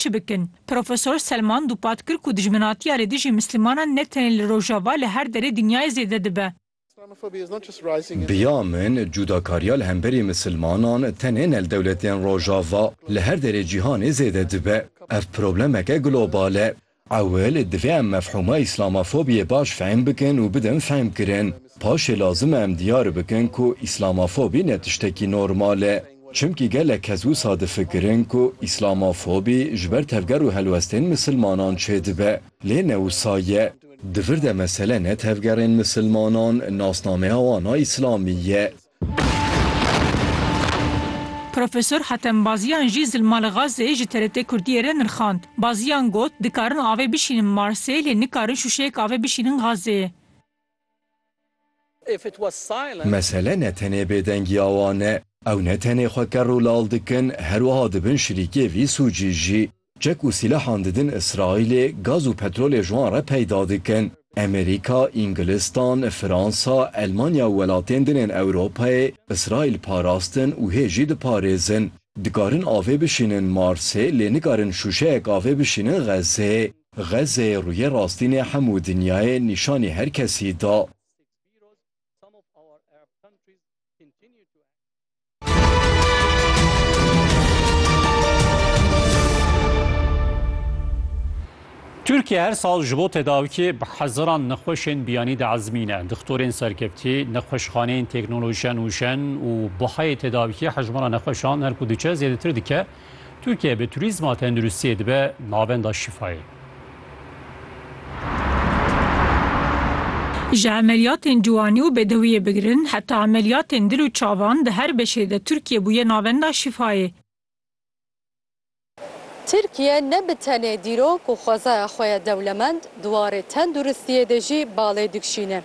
Çi bikin? Profesor Selman dûpat kir ku dijminatiya li dijî Mislimanan ne tenê li Rojava li her derê dinyayê zêde dibe. Biya min cudakariya li hemberî Misilmanan tenê ne li dewletên Rojava, li her derê cîhanê zêde dibe. Ev problemeke global e. Ewil divê em mefhûma Îslamafobiyê baş fehm bikin û bidin fehmkirin. Paşê lazim e em diyar bikin ku Îslamafobî ne tiştekî normal e. Çimkî gelek kes wisa difikirin ku îslamofobî ji ber tevger û helwestên misilmanan çêdibe. Lê ne wisa ye. Di vir de mesele ne tevgerên misilmanan, nasnameya wan a îslamî ye. Profesor Hatem Baziyan jî zilma li Gazeyê ji TRT Kurdiyê re nirxand. Baziyan got, Dikarin avê bişînin Marsê lê nikarin şûşeyek avê bişînin Gazeyê. Mesele ne tenê bêdengiya wan e. Ew ne tenê xwe kerr û lal dikin, her wiha dibin şirîkê vî sûcî jî. Çek û sîlehan didin Îsraîlê, gaz û petrolê ji wan re peyda dikin. Amerîka, Îngilistan, Fransa, Elmanya û welatên din ên Ewropayê Îsraîl parastin û hê jî diparêzin. Dikarin avê bişînin Marsê lê nikarin şûşeyek avê bişînin Xezzeyê. Xezê rûyê rastînê hemû dinyayê nîşanî her kesî da. Tirkiye her sal ji bo tedawikê bi hezaran nexweşên biyanî diezmîne. Dixtorên serkeftî, nexweşxaneyên teknolojiya nûjen û buhayê tedawikê hejmara nexweşan her ku diçe zêdetir dike. Tirkiye bi turîzma tenduristiyê dibe navenda şîfayê. Ji emeliyatên ciwanî û bedewiyê bigirin heta emeliyatên dil û çavan di her beşê de Tirkiye bûye navenda şîfayê. Tirkiye ne bi tenê dîrok û xwezaya xwe ye dewlemend, di warê tenduristiyê de jî balê dikşîne.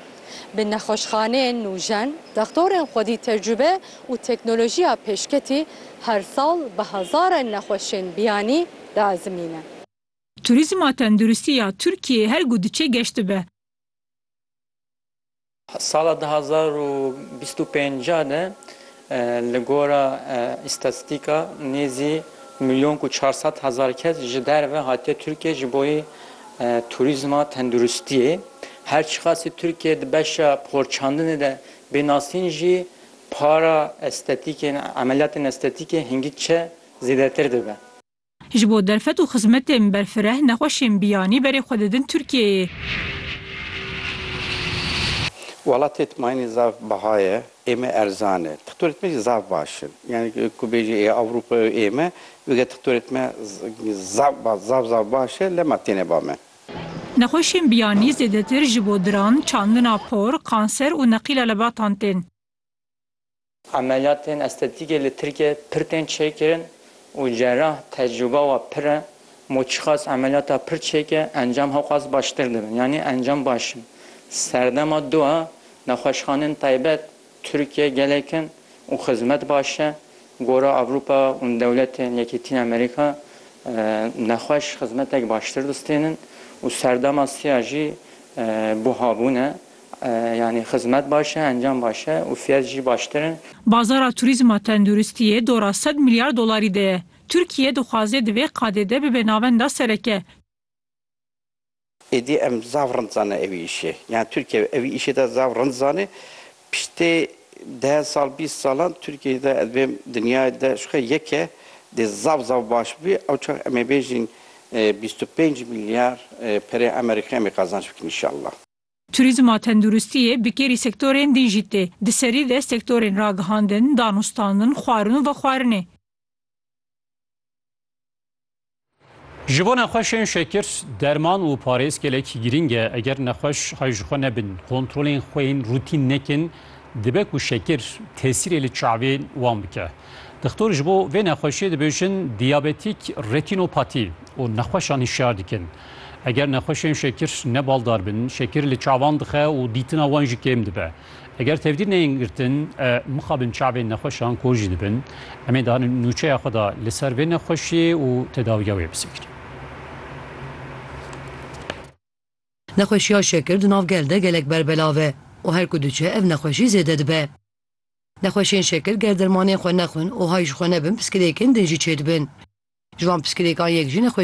Bi nexweşxaneyên nûjen, dextorên xwedî tecrube û teknolojiya pêşketî her sal bi hezaran nexweşên biyanî diezimîne. Turîzma tenduristî ya Tirkiyeyê her ku diçe geş dibe. Sala du hezar û bîst û pênc de li gora îstatîstîka nêzî milyon û çar sed hezar kes ji derve hatiye Tirkiyeyê ji bo turîzma tenduristiyê. Her çiqasî Tirkiye di beşa porçandinê de bê nasîn jî, Para estetîkê, emeliyatên estetîkê hingî çi zêdetir dibe. Ji bo derfet û xizmetên berfireh nexweşên biyanî berê xwe didin Tirkiyeyê. Welatê tmayînê zaf biha ye, ême erzan e. Tixtorê tme jî zaf baş in. Yanî ku bêjî ê Ewropa û ême, wêge tixtorê tme zaf zaf baş e, lema têne ba me. Nexweşên biyanî zêdetir ji bo diran, çandina por, kanser û neqîla lebatan tên. Emeliyatên estetîkê li Tirkiyeyê pir tên çêkirin û cerrah tecrûba we pir e. Mo çiqas emeliyata pir çêke encam hewqas baştir dibin. Yanî encam baş in. Serdema du e, nexweşxaneyên taybet Tirkiye gelek in û xizmet baş e. Gora Ewropa û dewletên Yekîtîn Amerîka nexweş xizmetek baştir distênin û serdema siya jî buha bûn e. Yanî xizmet baş e, encam baş e û fiyet jî baştir in. Bazara turîzma tenduristiyê dora sed milyar dolarî de ye. Tirkiye dixwaze di vê qadê de bibe navenda sereke. Êdî em zaf rind zanîn ev îşê. Yan Tirkiye ev îşê de zaf rind zanîn. Piştê deh sal, bîst salan Tirkiyeyê de ez bêm dinyayê de ji xwe yeke dê zaf zaf baş bibî. Ew çax em ê bêjîn bîst û pênc milyar pereyê Amerîkî em ê qazanc bikin înşalla. Turîzm a tenduristiyê bi kêrî sektorên din jî tê. Di serî de sektorên ragihandin, danûstandin, xwarin û vexwarinê. Ji bo nexweşên şekir, derman û parêz gelek girîng e. Eger nexweş hay ji xwe nebin, kontrolên xwe yên rûtîn nekin, dibe ku şekir tesîrê li çavê wan bike. Dixtor ji bo vê nexweşiyê dibêjin diyabetîk retînopatî û nexweşan hişyar dikin. Eger nexweşên şekir ne baldar bin, şekir li çavan dixe û dîtina wan jî kêm dibe. Eger tevdîr neyên girtin mixabin çavên nexweşan kor jî dibin. Em ê di nûçeya xwe de li ser vê nexweşiyê û tedawiya wê bisekînin. Nexweşiya şekir di nav gel de gelek berbelav e û her ku diçe ev nexweşî zêde dibe. Nexweşên şekir ger dermanên xwe nexwin û hay ji xwe nebin piskirêkên din jî çêdibin. Ji van piskirêkan yek jî nexweşiyên